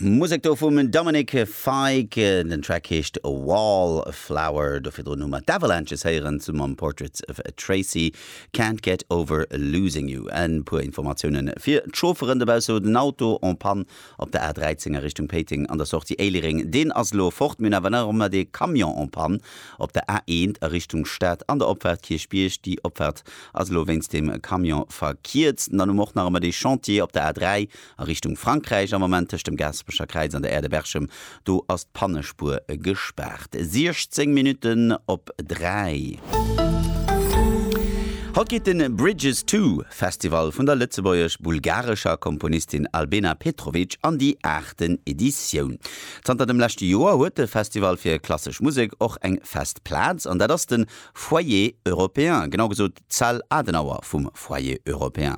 Musek do vum Dominic Fike, den Track heescht Wall Flower. Do virdrun hu mer d'Avalanches héieren zu mam Portraits of Tracy, Can't get over losing you. E puer Informatiounen fir d'Chaufferen dobausse, huet en Auto en Panne op der A13 a Richtung Péiteng an der Sortie Éilereng, deen ass elo fort. Mir hunn awer nach ëmmer dee Camion en Panne op der A1 a Richtung Stad an der Opfahrt Kierchbierg, déi Opfahrt. ass elo wéinst dem Camion verkierzt. An dann hu mer och nach ëmmer dee Chantier op der A3 a Richtung Frankräich am Moment tëscht dem Gaaspecher Kräiz an der Aire de Berchem, do ass d'Pannespuer gespaart. 16 Minutten op 3. Haut geet de Bridges to Festival vun der lëtzebuergesch-bulgarescher Komponistin Albena Petrovic an déi aachten Editioun. Zanter dem leschte Joer huet de Festival fir klassesch Musek och eng fest Plaz an dat ass de Foyer européen, genau gesot d'Zell Adenauer vum Foyer européen.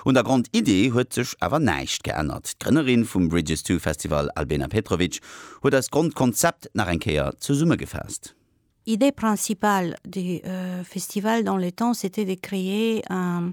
Un der Grondidee huet sech awer näischt geännert. D'Grënnerin vum Bridges to Festival Albena Petrovic huet eist Grondkonzept nach eng Kéier zesummegefaasst. Idée principale du festival dans le temps, c'était de créer un.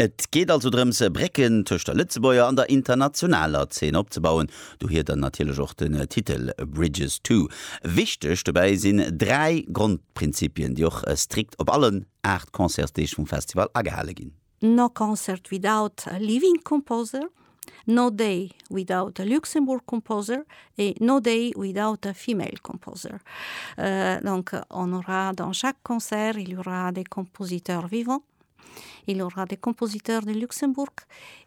Et geet also drëms, Brécken tëscht der Lëtzebuerger an der internationaler Zeen opzebauen, dohier dann natierlech och den Titel Bridges to. Wichteg dobäi sinn dräi Grondprinzipien, déi och strikt op allen aacht Concertsdeeg vum Festival agehale ginn. No Concert without a Living Composer, No Day without a Luxembourg Composer e No Day without a Female Composer. Donc on aura dans chaque concert, il y aura des compositeurs vivants. Il y aura des compositeurs de Luxembourg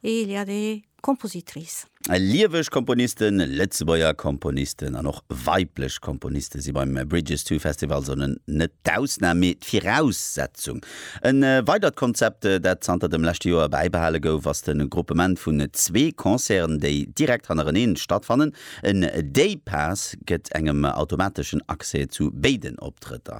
et il y a des compositrices. Lieweg Komponisten, Lëtzebuerger Komponisten an och weiblech Komponiste si beim Bridges to Festival Sone net d'Ausnam, mee d'Viraussetzung. E weidert Konzept, dat zanter dem leschte Joer bäibehale gouf, ass de Groupement vun zwee Concerten, déi direkt hannereneen stattfannen. En Day-Pass gëtt engem automateschen Accès zu béiden Optrëtter.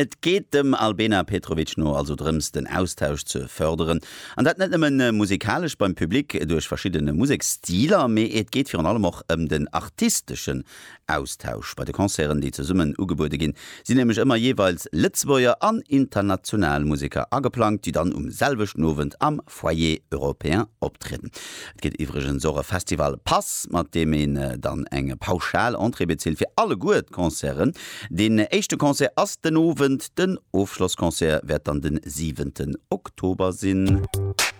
Et geet dem Albena Petrovic no also drëms, den Austausch ze fërderen, an dat net nëmmen musikalesch beim Public duerch verschiddene Museksstiler, mee et geet virun allem och ëm den artisteschen Austausch. Bei de Concerten, déi zesummen ugebuede ginn, sinn nämlech ëmmer jeeweils Lëtzebuerger an international Museker ageplangt, déi dann um selwechten Owend am. Foyer Européen optrieden. Et gëtt iwwregens och e Festival Pass, mat deem een dann eng pauschal Entrée bezilt fir alleguer d'Concerten. Deen éischte Concert ass den Owend, den Ofschlossconcert wäert dann den siwenten Oktober sinn.